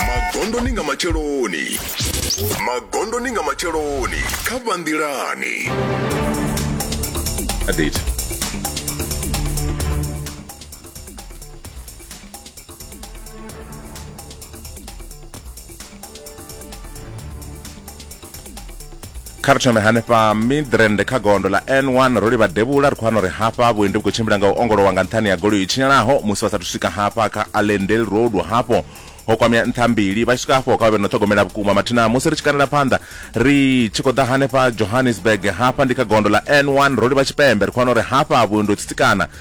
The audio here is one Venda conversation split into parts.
magondoni nga matsheloni magondoni nga matsheloni kha vhanḓilani a date kha ri thome hanefha midrand kha gondo ḽa n1 ro livha devhula ri khou wana uri hafha vhuendi vhu khou tshimbila nga u ongolowa nga nṱhani ya goloi i tshinyalaho musi vha sathu swika hafha kha allendale road hafho ho kwamea nṱha mbili vha tshi swika hafho kha vhe no ṱhogomela vhukuma mathina musi ri tshi kanela phanḓa ri tshi khou ḓa hanefha johannesburg hafha ndi kha gondo ḽa n1 ro livha tshipembe ri khou wana uri hafha vhuendi ho tsitsikana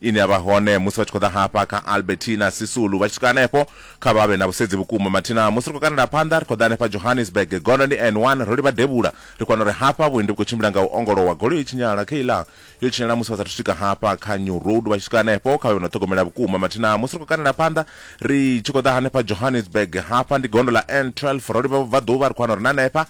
ine ya vha hone musi vha tshi khou ḓa hafha kha Albertina Sisulu vha tshi swika hanefho kha vha vhe na vhusedzi vhukuma mathina musi ri khou kandela phanḓa ri khou ḓa hanefha Johannesburg gondo ndi N1 ro livha devhula ri kwana uri hafha vhuendi vhu khou tshimbila nga u ongolowa goloi yo tshinyala kheiḽa yo tshinyala musi vha sathu swika hafha kha New Road vha tshi swika hanefho kha vha vhe na ṱhogomela vhukuma mathina musi ri khou kandela phanḓa ri tshi khou ḓa hanefha Johannesburg hafha ndi gondo ḽa N12 ro livha vhubvaḓuvha ri khou wana uri na hanefha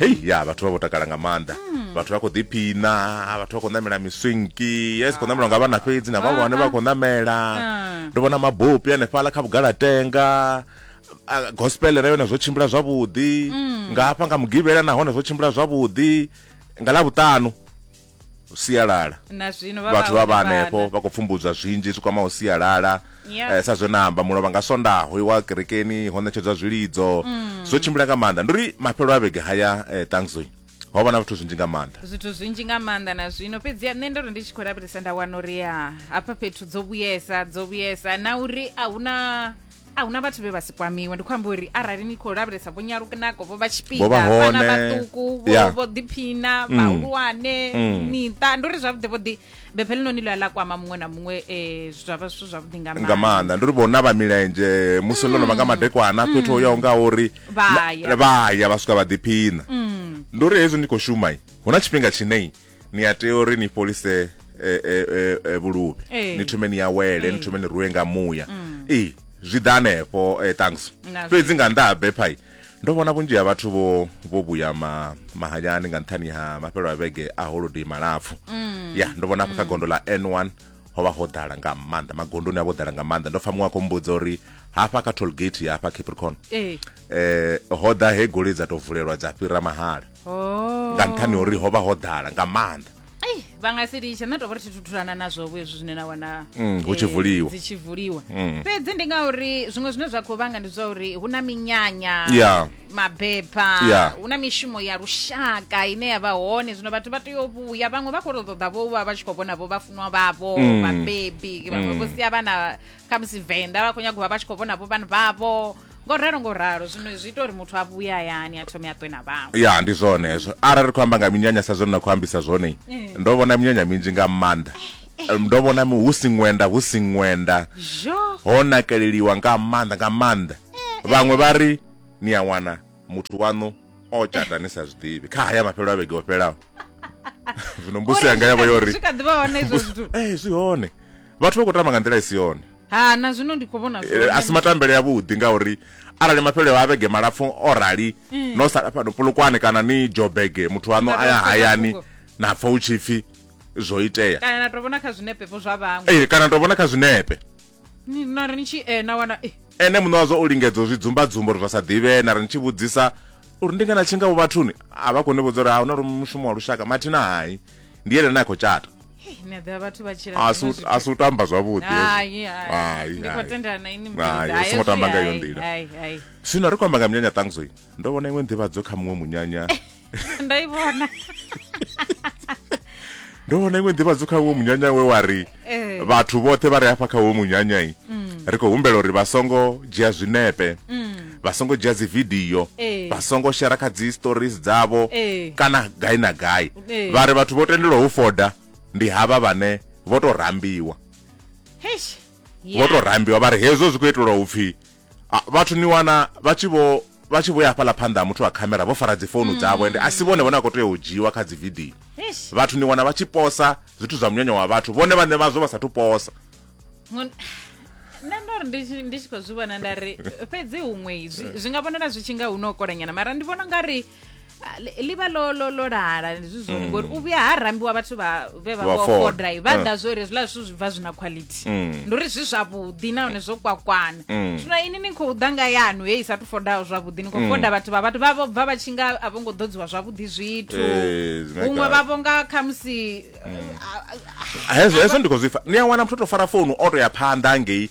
hei ya vhathu vha vho takala nga maanḓa vhathu vha khou ḓiphina vhathu vha khou ṋamela miswinki yes khou ṋamelwa nga vhana fhedzi na vhahulwane vha khou ṋamela ndo vhona mabopi hanefhaḽa kha vhugalatenga a- gospel ra yone zwo tshimbila zwavhuḓi nga hafha nga mugivhela nahone zwo tshimbila zwavhuḓi nga ḽa vhuṱanu sialala na zwino vha vhathu vha vha hone hanefho vhana. vha khou pfumbudzwa zwinzhi zwi kwamaho sialala Yeah. eh, sa zwe na amba mulovha nga sondaho iwa kerekeni ho ṋetshedzwa zwilidzo Mm. zwo tshimbila nga maanḓa ndi uri mafhelo a vhege haya eh, tangzoi ho vha na zwithu zwinzhi nga maanḓa zwithu zwinzhi nga maanḓa na zwino fhedzi ya, nṋe ndo ri ndi tshi khou lavhelesa nda wana uri ya hafha fhethu dzo vhuyesa dzo vhuyesa na uri a huna a huna vhathu vhe vha si kwamiwe ndi khou amba uri arali ni khou lavhelesa vho nyalukanako vho vha Vho tshipiḓa vha hone. vhana vhaṱuku vho Yeah. vho ḓiphina vhahulwane miṱa ndi uri zwavhuḓi vho ḓi bephe ḽinoni ḽo ya ḽa kwama muṅwe na muṅwe um zwa vha zwithu zwavhuḓi nga nga maanḓa maanḓa ndi uri vhona vha milenzhe musi ndo no vha nga madekwana fhethu ho yaho nga uri Vha na- ya. vha ya vha swika vha ḓiphina ndi uri hezwi ndi khou shuma i, hu na tshifhinga tshinei ni a tea uri ni fholise eh, eh, eh, eh, vhuluvhi Ee. ni thome ni awele ni thome ni ruwe nga muya ee zwi ḓa hanefho eh, thanks Na- fhedzi nga nnḓa ha bephai ndo vhona vhunzhi ha vhathu vho vho vhuya ma, mahayani nga nṱhani ha mafhelo a vhege a holiday malapfu ya ndo vhona hafha kha gondo ḽa n1 ho vha ho ḓala nga maanḓa magondoni a vho ḓala nga maanḓa ndo pfa muṅwe a khou mbudza uri hafha kha toll gate ya hafha capricorn ee eh ho ḓa he goloi dza to vulelwa dza fhira mahala oh. nga nṱhani ha uri ho vha ho ḓala nga maanḓa Ai, vha nga si litshe nṋe tovha ri tshi thuthulana nazwo vho hezwi zwine na wana Mm, hu tshi eh, vuliwa. dzi tshi vuliwa Mm. fhedzi ndi ngauri zwiṅwe zwine zwa khou vhanga ndi zwa uri hu na minyanya Yeah. mabepha Yeah. hu na mishumo ya lushaka ine ya vha hone zwino vhathu vha tea u vhuya vhaṅwe vha khou tou ṱoḓa vho vha vha tshi khou vhona vho vhafunwa vhavho Mm. vhabebi vhaṅwe vho sia vhana khamusi venḓa vha khou nyaga u vha vha tshi khou vhonavho vhana vhavho ngo ralo ngo ralo zwino zwi ita uri muthu a vhuye hayani a thome a ṱwe na vhaṅwe ya ndi zwone hezwo arali ri khou amba nga minyanya sa zwone na khou ambisa zwone eh. ndo vhona minyanya minzhi nga maanḓa eh. ndo vhona hu si ṅwenda hu si ṅwenda ho nakeleliwa nga maanḓa nga maanḓa eh, vhaṅwe vha ri ni a wana muthu waṋu o tshata ni sa zwiḓivhi kha haya mafhelo a vhege o fhelaho zwino mbusi yanga yavho yo ri zwi hone vhathu vha khou tamba nga nḓila i si yone ha na zwino ndi khou vhona eh, a si matambele ya vhuḓi ngauri arali mafhelelo a vhege malapfu o rali mm. no sala fhano pulukwane kana ni jobege muthu waṋo a ya hayani na pfa u tshi pfi zwo itea kana na tou vhona kha zwinepe vho zwa vhaṅwe ee eh, kana na tou vhona kha zwinepe na ri ni tshi ena eh, wana e ene muṋe wazwo o lingedza zwi dzumba-dzumba uri zwa sa ḓivhee na ri ni tshi vhudzisa uri ndi ngana tshi nga vho vhathuni a vha kone vhudza uri ha u na ri mushumo wa lushaka mathina hai ndi ene ane a khou tshata ni a ḓivha vhathu vha tshila a si u- a si u tamba zwavhuḓi hezwo. Hai, hai. Hai, ndi khou hai. tendelana na ini mbuelo. Hai, Hai, u songo tamba nga iyo hai, nḓila. hai, hai. zwino ri khou amba nga munyanya ṱanguzoi ndo vhona iṅwe nḓivhadzo kha muṅwe munyanya nda i vhona ndo vhona iṅwe nḓivhadzo kha muṅwe munyanya we wa ri eh. vhathu vhoṱhe vha re hafha kha wo munyanyai mm. ri khou humbela uri vha songo dzhia zwinepe mm. vha songo dzhia dzividiyo eh. vha songo shera kha dzi stories dzavho eh. kana gai na gai vha ri vhathu vho tendelwa u foda ndi havha vhane vho tou rambiwa vho tou rambiwa vha ri hezwo zwi khou itelwa upfhi ah, vhathu ni wana vha tshi vho vha tshi vho ya hafhaḽa phanḓa ha muthu wa khamera vho fara dzifounu dzavho ende a si vhone vhone a khou tea u dzhiiwa kha dzividio Eish. vhathu ni wana vha tshi posa zwithu zwa munyanya wa vhathu vhone vhaṋe vhazwo vha sathu posa Ngon- nṋe ndo ri ndi tshi- ndi tshi khou zwi vhona nda ri fhedzi huṅwe zwi zwi nga vhonala zwi tshi nga hu no kolanyana mara ndi vhona nga ri Ah, li- li vha lo lo lo lala zwi zwone ngori u vhuya ha rambiwa vhathu vha vhe vha Vha vho Ford. fodai vha Mm. ḓa zwo ri hezwiḽa zwithu zwi bva zwi na quality Mm. ndi uri zwi zwavhuḓi nahone zwo kwakwana Mm. zwino ini ni khou ḓa nga yanu ye i sa tu fodaho zwavhuḓi ni khou foda vhathu vha vhathu vha vho bva vha tshi nga a vho ngo ḓodziwa zwavhuḓi zwithu Eh, zwi na huṅwe kha- vha vho nga khamusi hezwo hezwo ndi khou zwi fa ni a wana muthu o to fara founu o to ya phanḓa ngei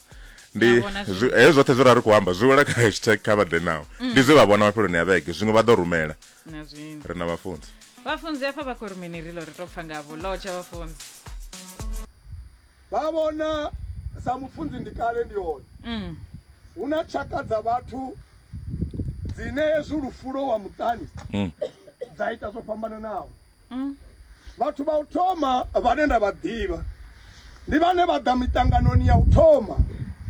ndi Vha vhona zwi- zwi- hezwi zwoṱhe zwo ra ri khou amba zwi wela kha hashtag kha vha ḓe naho Mm. ndi zwe vha vhona mafheloni ya vhege zwiṅwe vha ḓo rumela na zwino ri na vhafunzi vhafunzi afha vha khou ri mini rilo ri to pfa ngavho lotsha vhafunzi vha vhona sa mupfunzi ndi kale ndi hone Mm. hu na tshaka dza vhathu dzine hezwi lufulo wa muṱani Mm. dza ita zwo fhambananaho vhathu vha u thoma vhane nda vha ḓivha ndi vhane vha ḓa miṱanganoni ya u thoma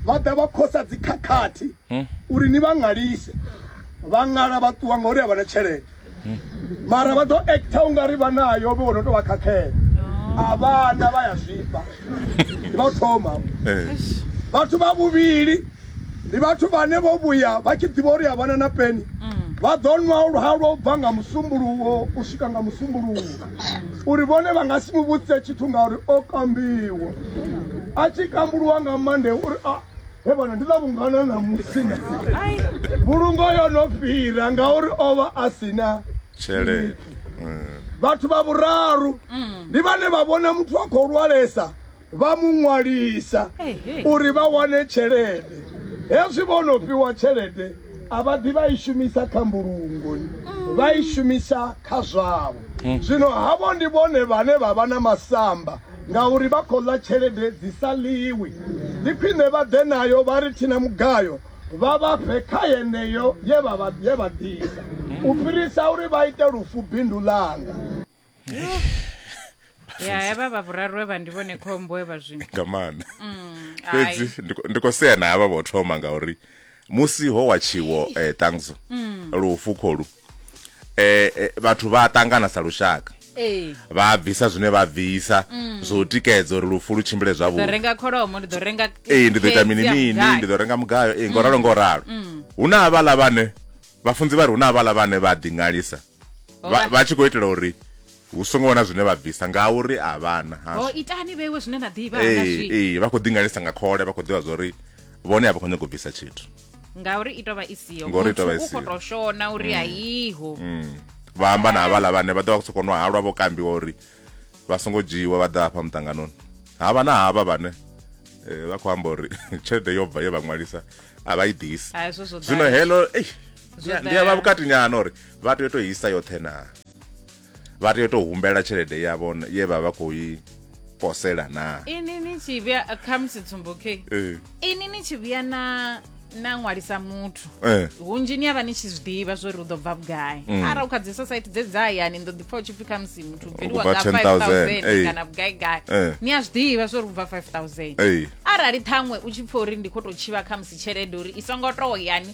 vha ḓa vha khosa dzikhakhathi hmm. uri ni vha ṅalise vha ṅala vha ṱuwa ngauri a vha na tshelede hmm. mara vha ḓo ekta u nga ri vha nayo vhe wo no tou vha khakhela a vhana vha ya zwifha ndi vha u thoma eh. vhathu vha vhuvhili ndi vhathu vhane vho vhuya vha tshi ḓivha uri a vhana na peni mm. vha ḓo nwa u lwalwa u bva nga musumbuluwo u swika nga musumbuluwo mm. uri vhone vha nga si mu vhudzise tshithu ngauri o kambiwa a tshi kambuluwa nga mande uri a ah, he vhona ndi ḽa vhungana na musi vhulungo yo no fhira ngauri o vha a si na tshelede mm. vhathu vha vhuraru ndi vhane vha vhona muthu a khou lwalesa vha mu ṅwalisa uri vha wane tshelede hezwi vho no fhiwa tshelede a vha ḓi vha i shumisa kha mbulungo vha i shumisa kha zwavho hmm. zwino havho ndi vhone vhane vha vha na masamba ngauri vha khou ḽa tshelede dzi sa ḽiwi ndi khwine vha ḓe nayo vha ri thina mugayo vha vha fhe kha yeneyo ye vha ḓisa u fhirisa uri vha ite lufu bindu ḽanga ya havha vha vhuraru vha ndi vhone khombo vha zwino nga maanḓa mm, fhedzi ndi khou sea na havha vho thoma ngauri musi ho watshiwo um eh, ṱangzo mm. lufu kholu eh, eh, vhathu vha ṱangana sa lushaka vha bvisa zwine vha bvisa mm. zwo tikedzo uri lufu lu tshimbile zwavhuḓirenga kholomo ndi ḓo renga ee ndi ḓo ita mini mini ndi ḓo renga mugayo ee ngo ralo ngo ralo hu na havhaḽa vhane vhafunzi vha ri hu na havhaḽa vhane vha ḓiṅalisa vha vha tshi khou itela uri hu songo vha na zwine vha bvisa nga uri a vhana ha o itani vheiwe zwine na ḓivha na ee zwi ee vha khou ḓinganisa nga khole vha khou ḓivha zwa uri vhone a vha khou nyanga u bvisa tshithu ngauri i tovha i siyo Ngauri i tovha i Muthu u siyo. Mm. khou to shona uri haiho vha amba na havhaḽa vhane vha ḓo vha khou sokou nwa halwa vho kambiwa uri vha songo dzhiiwa vha ḓa hafha muṱanganoni havha na havha vhane eh, vha khou amba uri tshelede yo bva ye vha ṅwalisa a vha i ḓisi a hezwo zwo zwino ḓala. heḽo ei Zwo Yeah. ndi ḓea. avha vhukati nyana uri vha tea u to i isa yoṱhe na vha tea u to humbela tshelede yavho na- ye vha vha khou i posela na ini ni tshi vhuya khamusi tsumbo k Eh, ini ni tshi vhuya na na ṅwalisa muthu eh. vhunzhi ni avha ni tshi zwi ḓivha zwori u ḓo bva vhugai Mm. arali u kha dzi society dze dza hayani ni ḓo ḓi pfa u tshi pfi khamusi muthu Ubva bveliwa nga 10,000, 5000 eh. kana vhugai gai Eh. ni a zwi ḓivha zwori ubva 5000 Eh. arali ṱhaṅwe u tshi pfa uri ndi khou tou tshiva khamusi tshelede uri i songo tou yani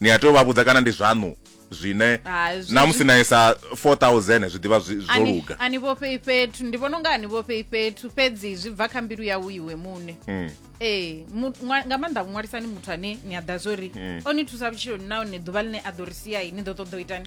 ni a tea u vha vhudza kana ndi zwaṋu zwine Hai, zwi- na musi na isa 4000 zwi ḓivha zwi- zwo Ani- luga ani vhofhei fhethu ndi vhona unga ani vhofhei fhethu fhedzi zwi bva kha mbilu yau iwe muṋe Mm. ee mu- ṅwa- nga maanḓa vhuṅwalisani muthu ane ni a ḓa zwori Mm. o ni thusa vhutshiloni nahone ḓuvha ḽine a ḓo ri siyai ni ḓo ṱoḓa u itani